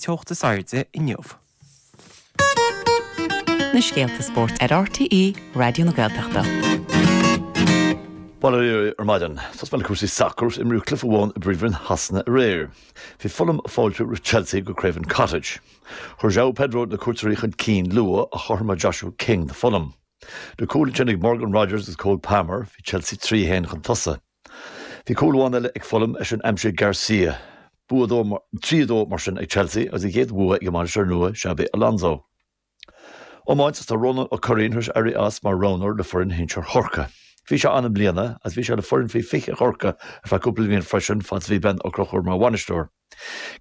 teocht is airde inniu. na scéalta spóirt ar RTÉ Raidió na Gaeltachta. Bail oraibh ar maidin, tosóidh mé le cúrsaí sacair. Imríodh cluiche amháin i bpríomhroinn Shasana aréir. Bhí Fulham ag fáiltiú roimh Chelsea go Craven Cottage. Chuir Joao Pedro na cuairteoirí chun cinn luath ach chothromaigh Joshua King do Fulham. Le cúl ansin ag Morgan Rogers agus Cole Palmer, bhí Chelsea trí a haon chun tosaigh. Bhí cúl amháin eile ag Fulham é sin aimsithe ag Garcia. Bua trí a dó mar sin ag Chelsea agus a gcéad bhua ag a mbainisteoir nua Xabi Alonso. Iomáint is tá Rónán Ó Curraoin tar éis éirí as mar roghnóir le foireann shinsir Chorcaí. Bhí sé ann i mbliana agus bhí sé le foireann faoi 20 Chorcaí ar feadh cúpla bliain freisin fad is a bhí Ben Ó Conchúir mar bhainisteoir.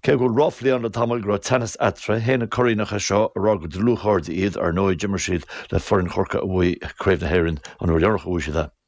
Cé go bhfuil ráflaí ann le tamall go raibh teannas eatarthu, shéan an Curraoineach é seo ag rá gur dlúthchairde iad, ar ndóigh d'imir siad le foireann Chorcaí a bhuaigh Craobh na hÉireann an uair dheireanach a bhuaigh siad é.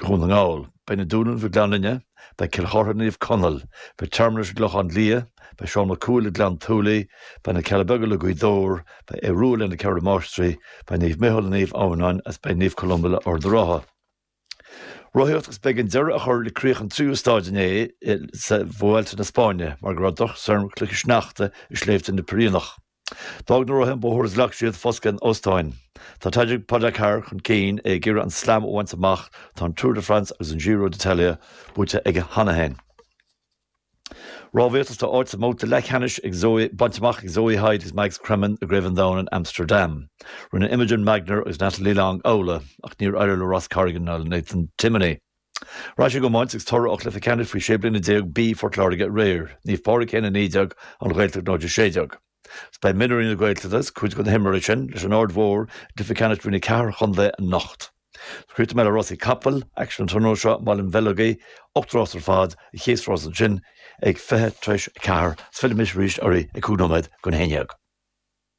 Dhún na nGall. Beidh Na Dúnaibh le Gleann Fhinne, beidh Cill Chartha le Naomh Conaill, beidh Tearmann leis an gClochán Liath, beidh Seán Mac Cumhaill le Gleann tSúilí, beidh Na Cealla Beaga le Gaoth Dobhair, beidh Aodh Rua le Na Ceithre Máistrí, beidh Naomh Micheál le Naomh Adhamhnáin agus beidh Naomh Columba le Ard an Rátha. Rothaíocht agus b'éigean deireadh a chur le críoch an tríú stáid inné sa Vuelta na Spáinne mar go raibh drochstoirm cloiche sneachta i sléibhte na Piréineach. D'fhág na rothaithe an bóthar agus ghlac siad foscadh in óstáin. Tá Tadej Pogačar chun cinn, é ag iarraidh an Slam a bhaint amach, tá an Tour de France agus an Giro d'Italia buaite aige cheana féin. Rámhaíocht, is tá áit sa mbabhta leathcheannais ag Zoe bainte amach ag Zoe Hyde agus Mags Cremen i gCraobh an Domhain in Amsterdam. Rinne Imogen Magner agus Natalie Long amhlaidh, ach níor éirigh le Ross Corrigan ná le Nathan Timoney. Ar ais chuig iomáint agus toradh ó chluiche ceannais faoi 16 bliana B Phort Láirge aréir, Naomh Pádraig 1 19, An Ghaeltacht 0 16. Is beidh mionúirí na Gaeltachta, cuid de na himreoirí sin, leis an Aird Mhór i gcluiche ceannais roinn a ceathair an chontae anocht. Críochnóidh mé le rásaí capall, aicsean an tráthnóna seo i mBaile an Bheileogaigh, 8 rás ar fad, an chéad rás ansin ag 20 tar éis a ceathair, agus fillfidh mise arís oraibh ag cúig nóiméad don haon déag.